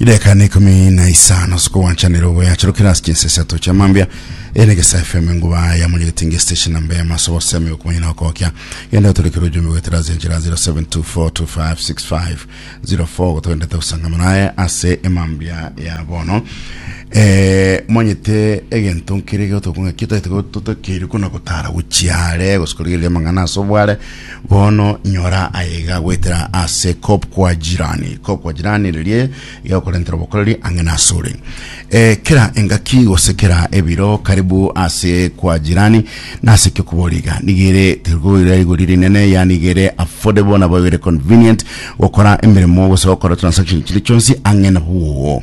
ideka na ikumi na isano sikogwanchanera ogoyacharukera ase chinsa isato chia mambia ene gesa fm enguba ya munyegetinge station namba ya maso gosemi okumanya na okokya genda otorekere ojumbe gwetera ase enchera 0724256504 gotogentete gusangama naye ase emambia ya bono eh, mwanyete egento nkere gotokong'aki totokeire kuna gotara gochiare gosikorigereria amang'ana ase obware Bono nyora aiga goetera ase kobkwa jirani, kobkwa jirani riria igegokorentera obokoreri ang'e nasore. E, kera engaki gose kera ebiro karibu ase kwa jirani, nase ki okoboria iga? Nigo ere terigoira rigori rinene, yaani iga ere affordable nabo ere convenient gokora emeremo gose gokora transaction chire chionsi ang'e nabwo.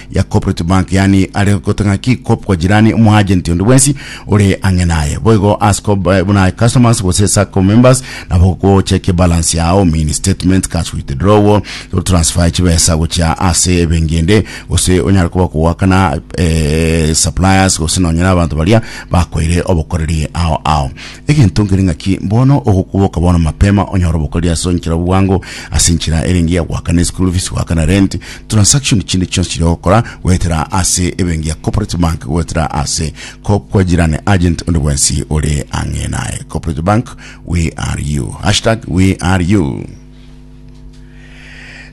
ya cooperative bank yani are gote ng'aki kop kwa jirani omoagent onde bwensi ore ang'e naye boigo as kop eh, buna customers gose sacco members nabo gochekia balance yao mini statement cash withdrawal transfer chibesa gochia ase ebengi ende gose onyare koba kogwakana eh, suppliers gose nonyera abanto baria bakoire obokoreri ao ao Egento nkere ng'aki bono ogokuboka bono mapema onyore obokori ase enchera bwango ase enchera ere engiya goakana eschool fees goakana rent transaction chinde chionsi chiria ogokora goetera ase ebenki ya corporate bank goetera ase ko kwajirane agent onde bwensi ore ang'e naye corporate bank we are you hashtag we are you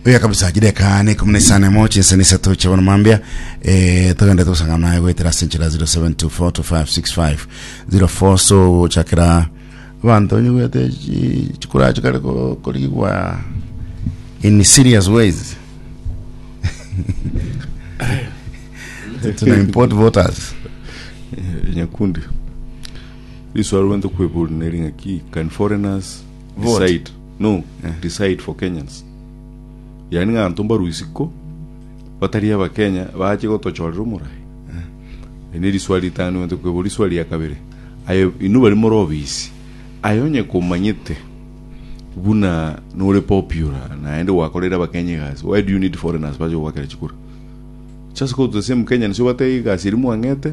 Buya kabisa chideka ne ikumi na isano emo chinsa na isato chia bono mambia eh, togende togosangana naye goetera ase enchera 07242565 04 so ochakera abanto onyigwete chi- chikura chikare ko- korigwa in serious ways tuna import voters Eh, nyakundi riswaro rwento kwebori neri ng'aki can foreigners Vote. Decide. No, Eh. decide for Kenyans. Yani ng'anto mbarwe isiko batari abakenya bache gotochorera omorai. Eri ne riswali ritano igwete kwebwa riswali ya kabere. Aye inwe bari more obisi. Aye onye komanyete buna nore popular naende gwakoreire abakenya egasi. Why do you need foreigners bache kogwakera chikura? Just go to the same Kenyans obatebie egasi eri mwang'ete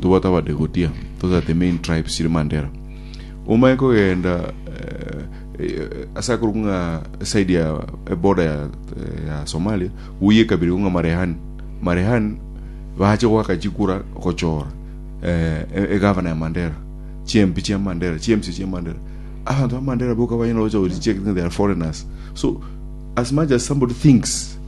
Tobwate abadegotia, totate main tribe chiri Mandera. Omanye kogenda eh, ase akorwa ng'a side ya eh, border ya, eh, ya Somalia, uye ekabira iko ng'a Marehani. Marehani bache gwaka chikura gochora eh, e- egavana ya Mandera, chiempi chia Mandera, chiemsi chia Mandera. Abanto ba Mandera boka banyala gocha gochicheka they are foreigners. So as much as somebody thinks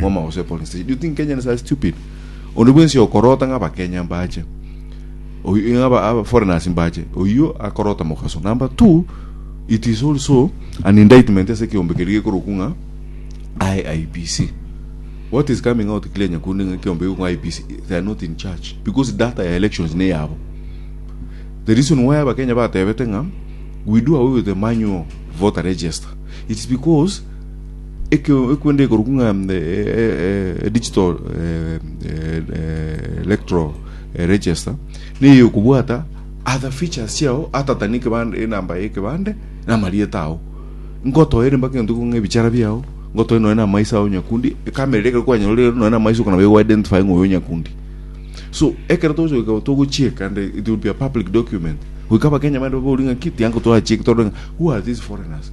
Mwama gose polling station. Do you think Kenyans are stupid? Onde bwensi okorota ng'a Abakenya mbache. Oyu- ng'a aba- aba foreigners mbache. Oyio akorota mogaso. Number two, it is also an indictment ase ekeombe keria gekorokwa ng'a IIBC. What is coming out clear nyakunde ng'a ekeombe gekorokwa ng'a IIBC, they are not in charge because data ya elections neyabo. The reason why Abakenya batebete ng'a we do away with the manual voter register, it's because Ekio ekwende ekorokwa ng'a digital electoral register neye okobwata other features chiao ata than ekebande enamba ya ekebande na amarieta ao ngotoere mpaka egento ekong'a ebichara biao ngotoe nonya na amaiso ao nyakundi ekamera eria ekero kwanyorire nonya na amaiso okona baigo identify ng'a oyo nyakundi so ekero togochia togochieka and it will be a public document goika abakenya bande baborie ng'aki tiango twachie tore ng'a who are these foreigners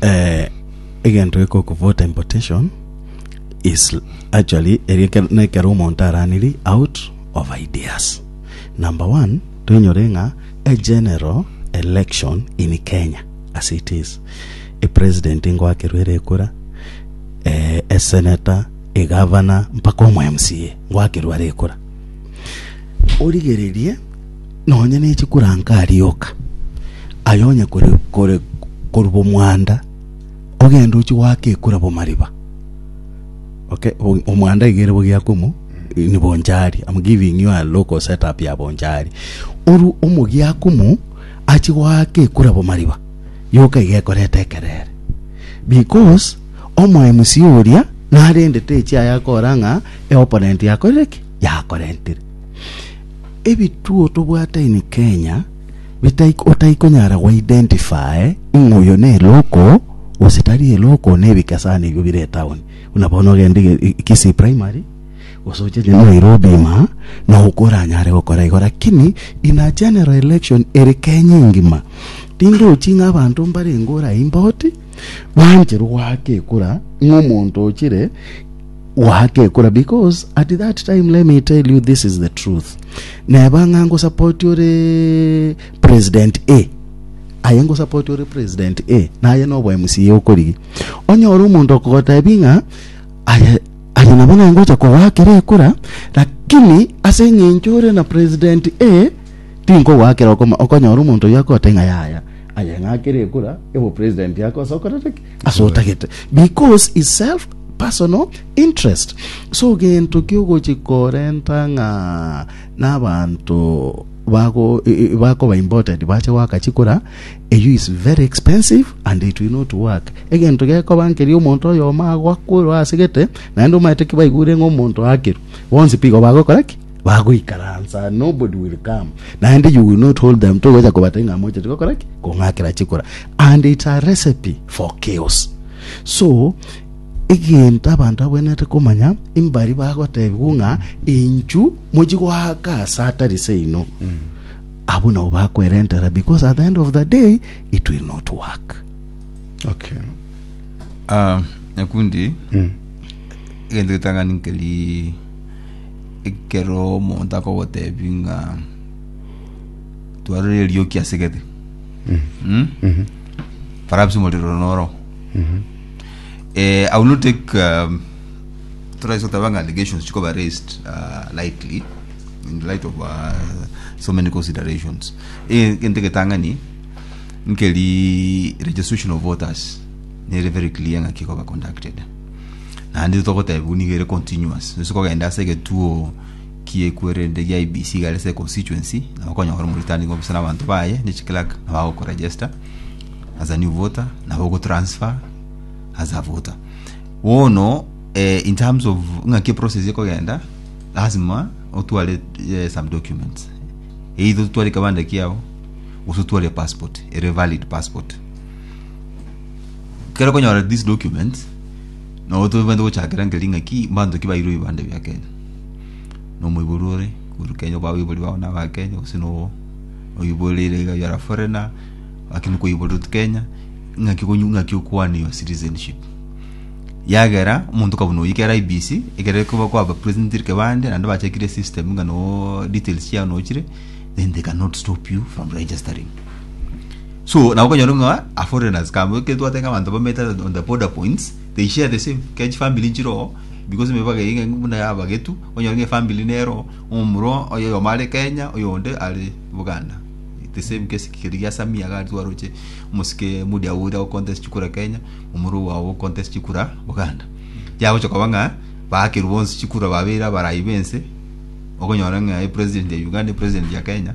Eh, egento gekoku voter importation is actually eri ekero- na ekero omonto araniri out of ideas number one toinyore ng'a a general election in kenya as it is a president ngoakerwe ere ekura eh, a senator a governor mpaka omo mca ngoakerwe are ekura origererie Nonya ne chikuranka arioka, aye onye korwa bomwanda, ogende ochie goaka ekura bomariba. Okay, omwanda iga ere bogiakwa omo ni bonchari. I'm giving you a local setup ya bonchari. Oru omogiakwa omo achie goaka ekura bomariba, yoka iga ekoreta ekerere. Because omoemsi oria narendete echiaye akora ng'a eopponent yakorire ki? Yakorentire. Ebituo tobwate in Kenya bitai otaikonyara go identify ng'a oyo ne eloko gose tari eloko na ebike sana ebio bire etown buna bono ogende Kisii primary gose oche Nairobi ima nabo koranyare gokora igo lakini in a general election ere Kenya engima tinde ochie ng'a abanto mbarenge ore aimboti. bancherwe goaka ekura ng'omonto ochire goaka ekura because at that time let me tell you this is the truth neba ng'a ngosapoti ore president a aye ngosapoti ore president a naye nobo mca okorigi onyore omonto okogotebi ng'a aye aye nabo nangocha kogwakera ekura lakini ase eng'encho ore na president a Tinkogoakera okoma okonyora omonto oyio akote ng'a yaya, aye ng'akere ekura y'obopresident ake ase okoreta ki? Ase otagete. Because is self personal interest. So gento kiogochi korenta ng'a n'abanto bago e- e- bakoba imported bache goaka chikura eyio is very expensive and it will not work. Egento gekoba nkeria omonto oyomo agoakorwa asegete naende omaete ki baigure ng'a omonto aakerwe bonsi pigo bagokora ki? Bagoikaransa, nobody will come, naende you will not hold them, togocha kobata ng'a mochete gokora ki? Kong'akera chikura. And it's a recipe for chaos. So, egento abanto abwenerete komanya, imbari bagotebigwa ng'a enchu mochi goaka ase atari seino. Abwo nabo bakwerentera because at the end of the day, it will not work. Okay. Ah, nyakundi egento getang'ani nkeri Ekero omonto akogotebi ng'a twarire erioki ase gete Mm? perhaps omorero noro Eh, I will not take um, turaise goteba ng'a allegations chikoba raised uh, lightly in the light of uh, so many considerations Eh, egento egetang'ani nkeri registration of voters nere very clear ng'a kikoba conducted Naende igo togotebiwa nigo ere continuous. Gose kogenda ase egetuo kiekwerende gia IEBC igare ase econstituency, nabo okonyora ore omoritani gokobisa na abanto baye, na echiclerk nabo bagokoregister as a new voter, nabo ogotransfer as a voter. Bono eh, in terms of ng'aki eprocess ekogenda, lasima otware eh, some documents. Either otware ekebande kiao, gose otware epassport, ere valid passport. kero konyora these documents no tobente gochakera nke ring'aki mbanto ki bairwe ibande bia Kenya no moibori ore kuru Kenya kwa boibori bao na ba Kenya gose no oiborire iga you are a foreigner lakini kwa oiborire to Kenya ng'aki konyu ng'aki okwane your citizenship yagera omonto kabuna oyio kera IBC ekere koba kwa ba president rike bande naende bachakire system ng'a no details chiao nochire then they cannot stop you from registering So nabo okonyora ng'a a foreigners kaba ekero twateba ng'a abanto bameete on the border points they share the same kera chifamiri nchire oo because emebagera eye ng'aki buna ya abagetu onyore ng'a efamiri nere oo omomura oye oyomo are Kenya oyonde are Buganda the same case keria gia Samia iga aria twaroche omosike modia oria ago contest chikura Kenya omorwa owo ago contest chikura Buganda yagocha koba ng'a baakerwa bonsi chikura babeire abarai b'ense okonyora ng'a president ya Uganda president ya Kenya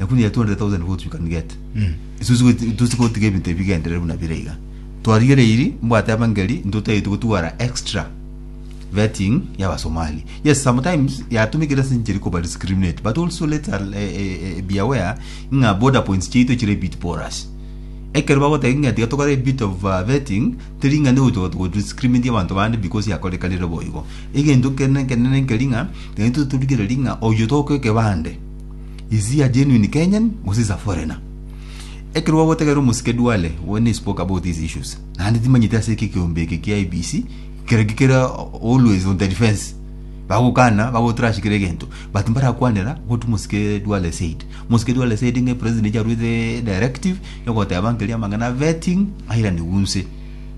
lakini ya 200,000 nigo otuika nigete isu sigo- tosigotiga ebinto ebi bigenderere buna bire iga twarigereiri mbwate abangeri intwe totagete gotwara extra vetting y'abasomali yes sometimes yatumikire ase enchera ekoba discriminate but also let's al- eh, eh, eh, be aware ng'a border points chiaito chire bit porous ekero bagoteba ng'a tiga tokore a bit of uh, vetting teri ng'a nigo to- to- discriminate abanto bande because yakorekanire boigo egento kene kenene nkeri ng'a naintwe torigereria ng'a oyo tokoa ekebande Is he a genuine Kenyan gose is a foreigner? Ekero gwagotegerera omosike Duale when he spoke about these issues, naende timanyeti ase eke ekeombe eke kia IEBC kere ki kere always on the defense bagokana bagotrash kera egento but mbarakwanera what mosike Duale said. Mosike Duale said ng'a president aruete directive ya ogoteba nkeria amang'ana a vetting airaniwe nse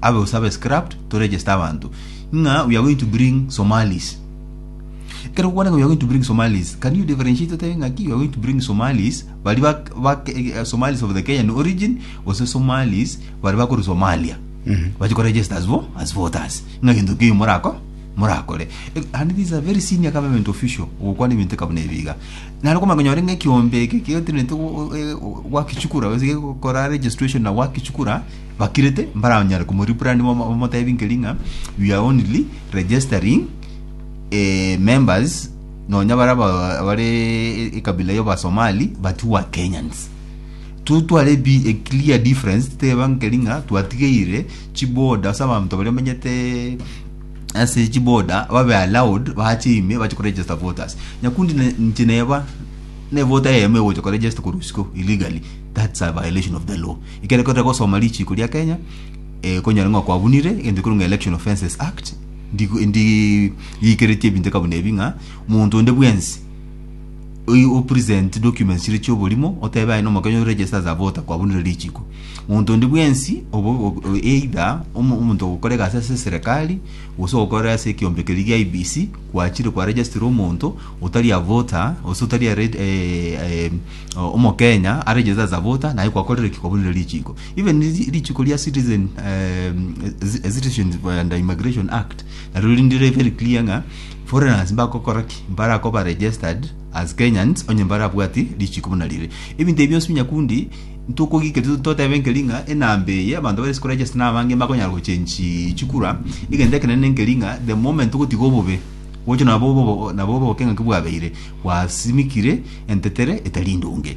abe gose abe scrapped to register abanto ng'a we are going to bring Somalis Ekero okwana ng'a we are going to bring Somalis, can you differentiate otabe ng'aki you are going to bring Somalis baria ba, ba Somalis of the Kenyan origin gose Somalis baria bakorwa Somalia bache ko register as, vo- as voters ng'a gento keiyo morako morakore Eh, and this is a very senior government official ogokwana ebinto eka buna ebi iga naro okomanya konyora ng'a ekiombe eke ketenete go- eh, go- gwakichukura gose gekora registration na gwakichukura bakirete mbaranyare komo rebrand bamo- bamotebi nkeri ng'a we are only registering eh, members nonya bara ba- bare ekabila yo basomali but who are kenyans tu tware bi a clear difference teba nkeri ng'a twatigeire chiboda ase abanto baria bamenyete ase chiboda babe allowed bache ime bache koregister voters nyakundi ne- inche neba nevote eyemo egocha koregister korwa isiko illegally that's a violation of the law ekero kore gosoma richiko ria kenya eh, konyora ng'a kwabunire egento ekiru ng'a election offences act Ndi- Ndirigeretie ebinto eka buna ebi ng'a omonto onde bwensi oyi opresent documents chire chioborimo otebe aye nomokenya oregister as a voter kwabunire richiko omonto onde bwensi obo obo- o- either omo- omonto ogokora egasi ase eserekari gose ogokora ase ekiombe keria gia IEBC gwachire kwa registera omonto otari a voter gose otari a reg- eh, eh, omokenya aregister as a voter naye kwakorire ki kwabunire richiko. Even ri- rituko ria citizen um, ci- citizens and immigration act narwo rinde riri very clear ng'a foreigners mbakokora ki mbarakoba registered as kenyans onye mbarabwati richiko buna rire ebinto ebi bionsi binyakundi ntokogika totebe nkeri ng'a enamba eye abanto bare sikoregister nabange bakonyara gochenchi chikura egento ekenene nkeri ng'a the moment ogotiga obobe gocha nabo obo- nabo obokeng'aki bwabeire gwasimikire entetere etari ndonge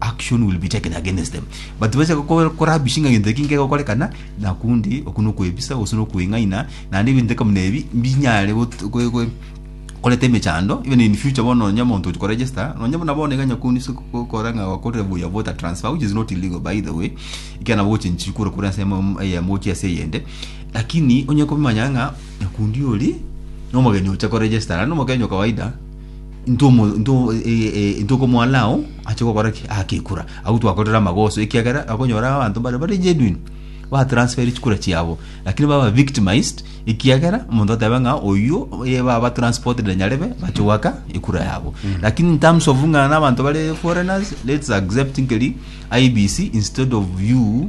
action will be taken against them but bacha goko- korabishi ng'a gento eki nkegokorekana nakundi oku nokwebisa gose nokweng'aina naende ebinto eka buna ebi mbinyare got- gwe- gwe- koreta emechando even in future bono nonya omonto ogochia koregister nonya buna bono iga nyakunde ase gokora ng'a gwakorire buya voter transfer which is not illegal by the way ekiagera nabo ogochenchiri kura korwa ase emo- eyemo gochia ase eyende lakini onye komanya ng'a nyakundi oria nomogeni ocha koregestara naende omogeni okawaida. intwe omo- intwe omo- e- e- e- intwe okomwana ao ache gokora ki agekura agwo twakorire amagoso ekiagera akonyora abanto bare bare genuine batransferi chikura chiabo lakini baba victimized ekiagera omonto ateba ng'a oyio oye baba transported nyarebe bache goaka ekura yabo lakini in terms of ng'a na abanto bare foreigners let's accept nkeri IEBC instead of you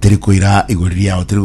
teri koira igori riao teri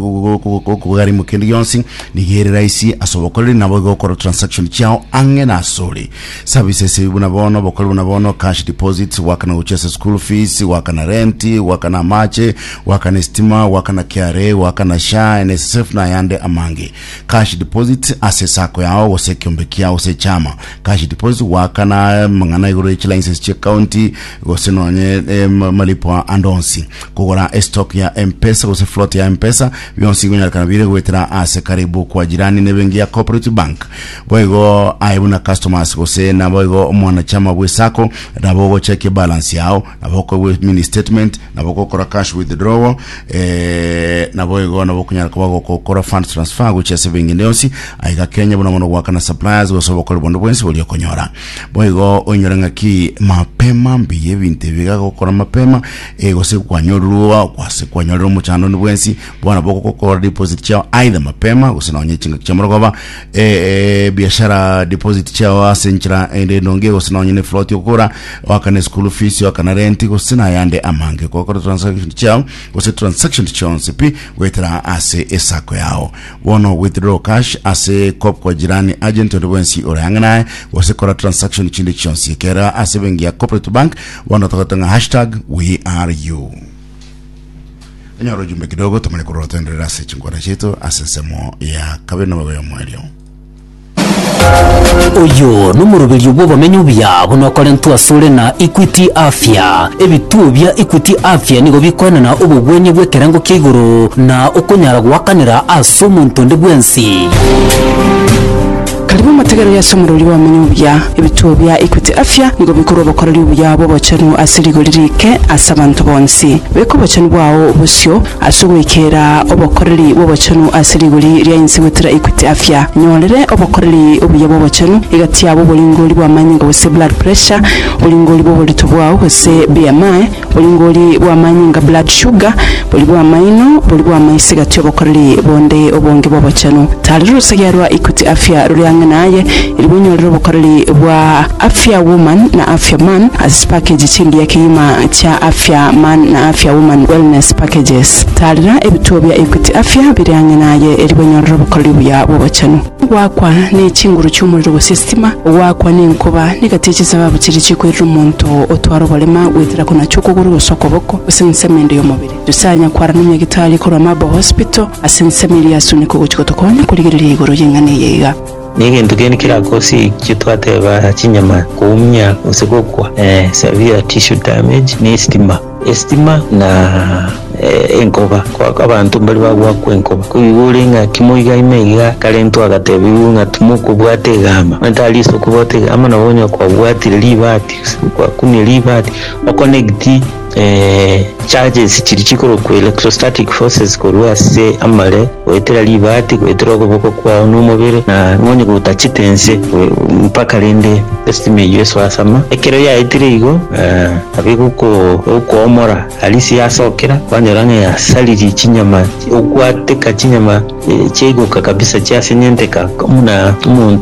kogarimo kende gionsi niga ere raisi ase obokoreri nabo iga okora transaction chiao ang'e na asore services ebi buna bono obokori buna bono cash deposits gwakana gochia ase school fees gwakana rent gwakana amache gwakana estima gwakana KRA gwakana SHA NSSF na ayande amange cash deposits ase sako yao gose ekiombe kiao gose echama cash deposits gwakana mang'ana igoro echi license chia county gose nonye eh, ma- malipo ande onsi Kogora estock ya M-pesa gose float ya M-pesa, bionsi nkonyarekana bire goetera ase karibu kwa jirani ne benki ya Cooperative Bank. Boigo aye buna customers gose naboigo omwanachama bwe sacco nabo ogochekia ebalance yao, nabo okobwe mini statement, nabo okokora cash withdrawal, eh, naboigo nabo okonyara koba gokokora fund transfer gochia ase benki ende yonsi aiga Kenya buna bono goakana suppliers gose obokori bonde bwensi boria okonyora. Boigo oinyore ng'aki mapema mbiya ebinto ebi iga gokora mapema Ee, gose kwanyorwa kwase kwanyorera omochandoni bwensi bono bogokora deposit chiao aidha mapema gose nonye chingaki chia morogoba e, e, biashara deposit chiao ase enchera ende enonge gose nonye ne float okora wakane school fees wakana rent gose nayande amange gokora transaction chiao gose transaction chionsi pi gwetera ase esako yao bono withdraw cash ase kop kwa jirani agent onde bwensi ore ang'e naye gose kora transaction chinde chionsi ekera ase bengi ya corporate bank Bono togote ng'a hashtag WeAreYou. Onyore ojumbe kidogo tomanye korora toenderere ase chinkwana chiaito ase ensemo ya kabere na obobe omo erio. Oyo nomoroberio bw'obomenyo obuya buna okorentwa asore na Equity Afya. Ebituo bia Equity Afya nigo bikoenana obogwenia bw'ekerengo kia igoro na okonyara goakanera ase omonto onde bwensi. Karibu amategero y'ase omorori bw'abamanya obuya. Ebituo bia Equity Afya nigo bikorwa obokoreri obuya bw'obochenu ase rigori riike ase abanto bonsi. Beka obochenu bwao bosio ase ogoikera obokoreri bw'obochenu ase rigori ria inse gotira Equity Afya. Nyorere obokoreri obuya bw'obochenu egati yabo oboringori bw'amanyinga gose blood pressure, oboringori bw'oborito bwao gose BMI, Boringori bw'amanyinga, blood sugar, bori bw'amaino, bori bw'amaiso egati obokoreri bonde obonge bw'obochenu. Taarera orosegea rwa Equity Afya rore ang'e naye erigwa onyorere obokoreri bwa Afya Woman na Afya Man ase chipakeji chingiya kegima chia Afya Man na Afya Woman Wellness Packages. Taarera ebituo bia Equity Afya bire ang'e naye erigwa onyorere obokoreri buya bw'obochenu. Goakwa ne chinguru chi'omorero gose esitima, goakwa nenkoba, negati ye chisababu chiria chikwerera omonto otware oborema goetera konachwa okogoro gose okoboko, gose ensemo ende y'omobere. Nyasae anyakwarana na nyagetari korwa Marble Hospital ase ensemo eria yasuneka ogochia gotokonya korigereria igoro y'eng'ana eye iga. Negento kende kerakosikwe twateba chinyama koumia gose gokwa, severe tissue damage, ne esitima. Esitima na enkoba. Kwaka abanto mbaria bagwakwa enkoba. Koigwa ore ng'a timo iga ime iga akarentwa agatebiwa ng'a timokobwata egamba. Onye tariso kobwata egamba nabo onye kwabwatire ribati gose kwakumire ribati o connect charges chiria chikorokwa electrostatic forces korwa ase amare goetera ribati goetera okoboko kwao na omobere na nonye gotachete ense mpaka rende esitima eyio esoe ase ama. Ekero yaetire igo. Abe gokoomora Alicia asokera kwanyora ng'a yasaririe chinyama, ogwateka chinyama chiaigoka kabisa chiasenyenteka buna omonto.